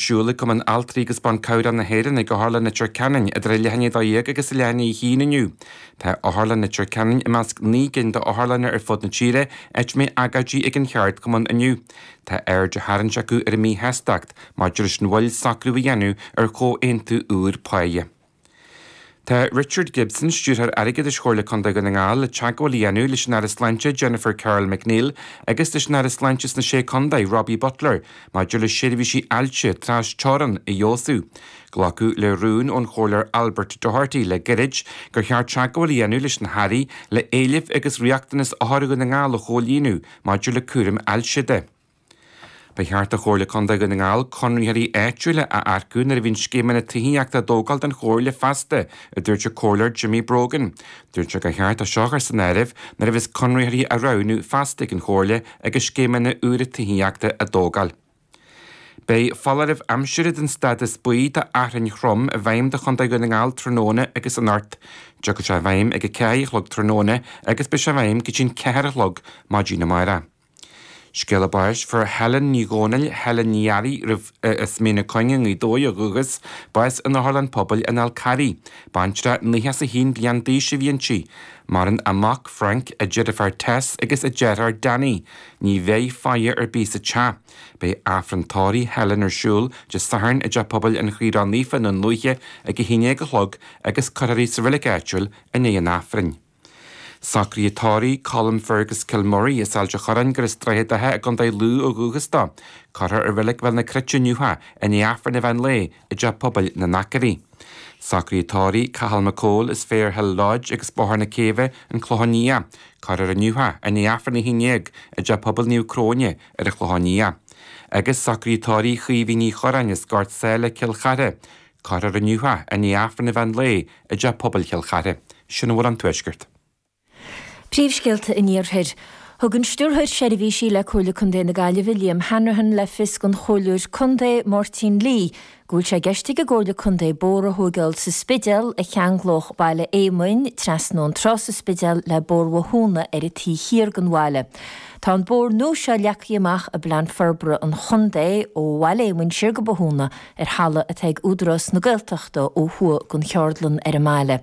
Siúlfaidh Cumann Altraí agus Ban Cabhrach na hÉireann ag Otharlann Leitir Ceanainn idir a leath i ndiaidh a 12 agus a leath i ndiaidh a haon inniu. Tá Otharlann Leitir Ceanainn i measc naoi gcinn de otharlanna ar fud na tíre áit a mbeidh agóidí ag an cheardchumann inniu. Tá aird á tharraingt acu ar a míshástacht maidir leis an mhoill socrú a dhéanamh ar chomhaontú úr páighe. Tá Richard Gibson, Stiúrthóir Airgeadais Chomhairle Contae Dhún na nGall, le teagmháil a dhéanamh leis an Aire Sláinte Jennifer Carroll MacNeill agus leis an Aire Sláinte sna Sé Contae, Robbie Butler, maidir le seirbhísí ailse trasteorann a fheabhsú. Glacadh le rún ón Chomhairleoir Albert Doherty le gairid gur cheart teagmháil a dhéanamh leis na hAirí le éilimh agus riachtanas othair Dhún na nGall a chomhlíonadh maidir le cúram ailse de. Ba cheart do Chomhairle Contae Dhún na nGall conraitheoirí áitiúla a earcú nuair a bhíonn scéimeanna tithíochta á dtógáil don Chomhairle feasta, a dúirt an Comhairleoir Jimmy Brogan. Dúirt sé gur cheart é seo a chur san áireamh nuair a bheas conraitheoirí á roghnú feasta ag an Chomhairle agus scéimeanna úra tithíochta á dtógáil. Beidh foláireamh aimsire den stádas buí do fhearthainn throm i bhfeidhm do Chontae Dhún na nGall tráthnóna agus anocht. Tiocfaidh sé i bhfeidhm ag a ceathair a chlog tráthnóna agus beidh sé i bhfeidhm go dtí'n ceathair a chlog maidin amárach. Scéala báis. Fuair Helen Uí Dhomhnaill, Helen Ní Fhearraigh, roimhe, as Mín na Cuinge i nGaoth Dobhair ó dhúchas, bás in Otharlann Pobail an Fhál Carraigh. Baintreach nócha is a haon bliain d'aois a bhí inti. Maireann a mac, Frank, a deirfiúr Tess agus a deartháir Danny. Ní bheidh faire ar bith sa teach. Beidh Aifreann tórraimh Helen ar siúl Dé Sathairn i dTeach Pobail an Chroí Ró-Naofa i nDún Lúiche ag a haon déag a chlog agus cuirfear í sa reilig áitiúil i ndiaidh an Aifrinn. Socruithe tórraimh Colin Fergus Kilmurry, as Ailt an Chorráin gur as Droichead Átha i gContae Lú ó dhúchas dó. Cuirfear i Reilig Bhéal na Cruite inniu é, i ndiaidh Aifreann an mheán lae i dTeach Pobail na nAcraí. Socruithe tórraimh Cathal Mac Cumhaill, as Fair Hill Lodge agus Bóthar na Céibhe, An Clochán Liath. Cuirfear inniu é, i ndiaidh Aifreann a haon déag, i dTeach Pobail Naomh Cróine ar an Chlochán Liath. Agus socruithe tórraimh Chaoimhín Uí Chorráin, as Gort Sáile, Cill Chartha. Cuirfear inniu é i ndiaidh Aifreann an mheán lae i dteach pobail Chill Chartha. Sin a bhfuil ón Tuaisceart. Príomhscéalta an Iarthair. Thug an Stiúrthóir Seirbhísí le Comhairle Contae na Gaillimhe, Liam Hanrahan, le fios don Chomhairleoir Contae, Máirtín Lee, go bhfuil sé i gceist ag an gComhairle Contae bóthar a thóigeáil sa Spidéal a cheanglódh Baile Éamoinn trasna ón trá sa Spidéal le Bóthar Bhothúna ar an taobh thiar den bhaile. Tá an bóthar nua seo leagtha amach i bPlean Forbartha an Chontae ó Bhaile Éamoinn siar go Bothúna ar thalamh atá ag Údarás na Gaeltachta ó thuaidh den cheardlann ar an mbaile.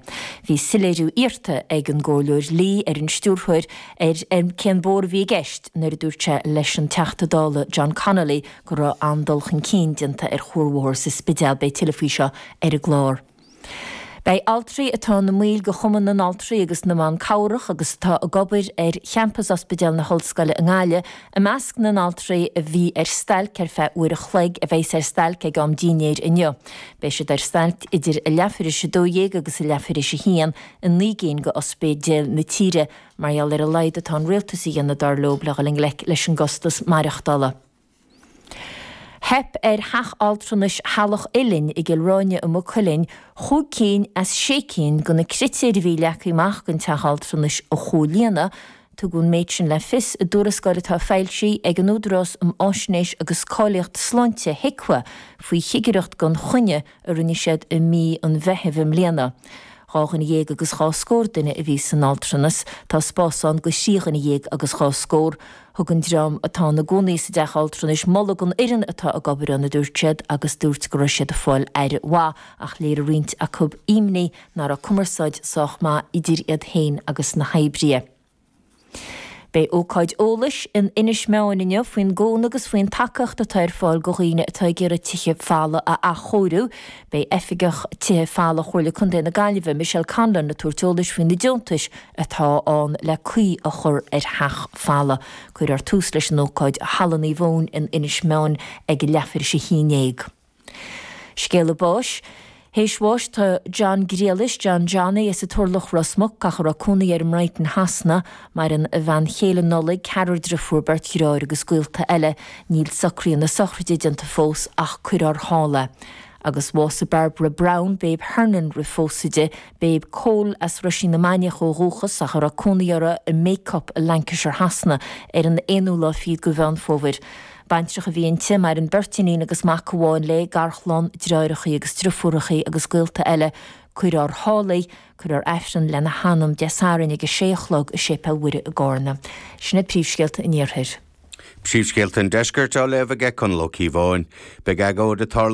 Bhí soiléiriú iarrta ag an gComhairleoir Lee ar an Stiúrthóir ar cén bóthar a bhí i gceist nuair a dúirt sé leis an Teachta Dála John Connolly go raibh an-dul chun cinn déanta ar chuarbhóthar sa Spidéal. Beidh tuilleadh faoi seo ar an gclár. Beidh altraí atá ina mbaill de Chumann na nAltraí agus na mBan Cabhrach agus atá ag obair ar champas Ospidéal na hOllscoile i nGaillimh i measc na n-altraí a bhí ar stailc ar feadh uair a chloig a bheas ar stailc ag am dínnéir inniu. Beidh siad ar stailc idir a leathuair théis a dó dhéag agus a leathuair théis a haon i naoi gcinn de ospidéil na tíre mar gheall ar a laghad atá an Rialtas a dhéanamh dar leo le dhul i ngleic leis an gcostas maireachtála. Theip ar Theach Altranais Theaghlach Uilinn i gCill Ráine i Maigh Cuilinn chúig cinn as sé cinn de na critéir a bhí leagtha amach don Teach Altranais a chomhlíonadh. Tugadh an méid sin le fios i dtuarascáil atá foilsithe ag an Údarás um Fháisnéis agus Cáilíocht Sláinte, HIQA, faoi chigireacht gan choinne, a rinne siad i mí an Mheithimh i mbliana. Dhá dhuine dhéag agus dhá scór duine a bhí san teach altranais, tá spás ann do thrí dhuine dhéag agus dhá scór. Thug an dream atá ina gcónaí sa dteach altranais moladh don fhoireann atá ag obair ann, a dúirt siad, agus dúirt go raibh siad ag fáil aire mhaith, ach léirigh roinnt acu imní nach raibh cumarsáid sách maith idir iad féin agus na hoibrithe. Beidh ócáid eolais in Inis Meáin inniu faoin gcúnamh agus faoin tacaíocht atá ar fáil do dhaoine atá ag iarraidh tithe folmha a athchóiriú. Beidh Oifigeach Tithe Folmha Chomhairle Contae na Gaillimhe, Michelle Conlon ag tabhairt eolais faoi na deontais atá ann le caoi a chur ar theach folamh. Cuirfear tús leis an ócáid i Halla Naomh Eoin in Inis Meáin ag leathuair théis a haon dhéag. Scéala báis Théis bháis do John Griallais, John Johnny, as an Turlach, Ros Muc, ach a raibh cónaí air i mBrighton Shasana, maireann a bhean chéile Nollaig, ceathrar driofúr, beirt dreáir agus gaolta eile. Níl socruithe na sochraide déanta fós ach cuirear siar iad. Agus bhásaigh Barbara Brown, Babe Hernon roimh phósadh di, Babe Cole, as Roisín na Mainiach ó dhúchas ach a raibh cónaí uirthi i mBacup i Lancashire Shasana, ar an aonú lá fichead de Mheán Fómhair. Baintreach a bhí inti, maireann beirt iníon agus mac amháin léi, garchlann, dreáireachaí agus driofúrachaí agus gaolta eile. Cuir ár shálaí, cuirfear aifreann lena hanam, Dé Sathairn ag a sé a chlog i Séipéal Mhuire i gCárna. Sin iad príomhscéalta an Iarthair. Príomhscéalta an Deiscirt á léamh ag Conall Ó Cíobháin. Beidh agóid ag tarlú.